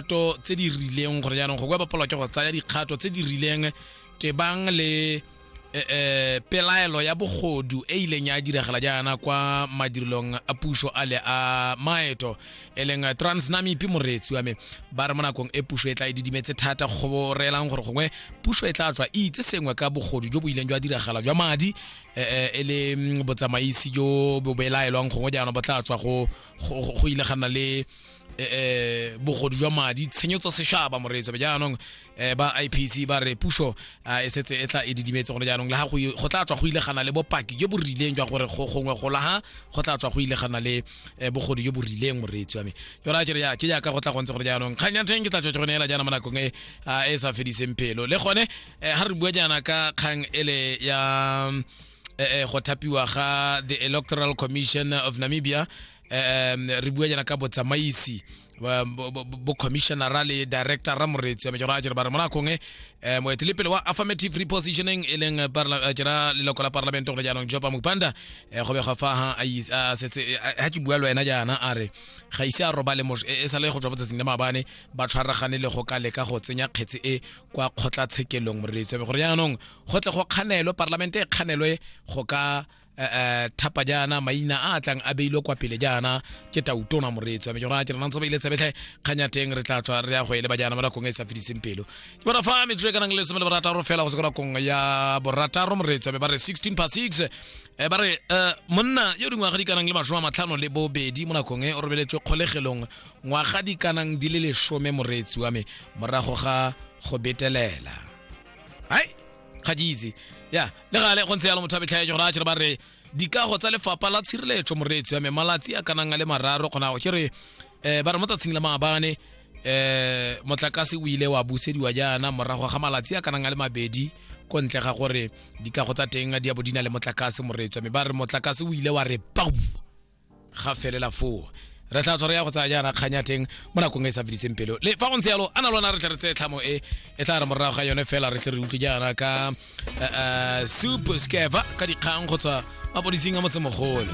dikgato tse di rileng gore jaanong go kwa bapalwa ke go tsaya dikgato tse di rileng tebang le eh, eh, pelaelo ya bogodu e ileng ya diragala jaana kwa madirelong a puso a le a maeto e leng eh, transnamipi moreetsi wa me ba re mo nakong e puso e tla e didimetse thata go reelang gore gongwe puso e tla tswa e itse sengwe ka bogodu jo bo ileng jwa diragala jwa madi eh, eh, e le mm, botsamaisi jo bo belaelwang gongwe jaanong bo tla tswa go go- go- go ile ga nna le eh, eh, bogodu jwa madi tshenyo tsa seshaba moreetso jaanong eh, ba ipc ba re puso ah, e setse e tla e didimetse gone jaanong le ga go i- go tla tswa go ile gana le bopaki jo bo rileng jwa gore go gongwe go laga go tla tswa go ile gana le eh, bogodu jo bo rileng moreetsi wa me yona ke re ya ke jaaka go tla gontse gore jaanong kgang ya ntheng ke tla tswa go neela jaana mo nakong e ah, e sa fediseng pelo le gone eh, ga re bua jaana ka kgang ele ya eh, eh, go thapiwa ga the electoral commission of namibia um re bua jana ka botsamaisi ba- bo- bo- bo commissionera le director ra moretsi wa mejoro a jere ba re monakong e um moetelepele wa affirmative repositioning e leng parla- eh, jera leloko la parlamente gone jaanong jopa mopanda um go bega fa ha a is- a setse eh, a- ha ke bua le wena jaana a re ga ise a robale mos- e e sa le go tswa botsatsing le maabane ba tshwaragane le go ka leka go tsenya kgetse e kwa kgotlatshekelong moreetsi wa me gore jaanong go tle go kganelwe parlamente e kganelwe go ka eh, eh, thapa jaana maina a a tlang a beilwe kwa pele jaana ke tautona moreetso ame jona ke re nantse ba ile tshebetlhe kgang ya teng re tla tswa re ya go eleba jaana mo nakong e e sa fediseng pelo ke bona fa metsotso e ka nang le lesome le borataro fela go se ko nakong ya borataro moreetso ame ba re 16 pa 6 Eh, ba re eh, monna yo dingwaga di kanang le masome a matlhano le bobedi mo nakong e o robeletswe kgolegelong ngwaga di kanang di le lesome moreetsi wa me morago ga go betelela ai ga di itse ya le gale go ntse yalo motho a betlhaetse gore a jere ba re dikago tsa lefapha la tshireletso moreetso ya me malatsi a kanang a le mararo kgonago ke re um ba re mo tsatsing la maabane um motlakase o ile wa busediwa jaana morago ga malatsi a kanang a le mabedi ko ntle ga gore dikago tsa teng di ya bo di na le motlakase moreetso me ba re motlakase o ile wa re pau ga felela foo re tla tshwara ya go tsaya jaana kgang ya teng mo nakong e sa fediseng pelo le fa go ntse yalo a na lona re tle re tseye tlhamo e e tla re morago ga yone fela re tle re utlwe jaana ka eh, eh, soup scava ka dikgang go tswa mapodising a motsemogolo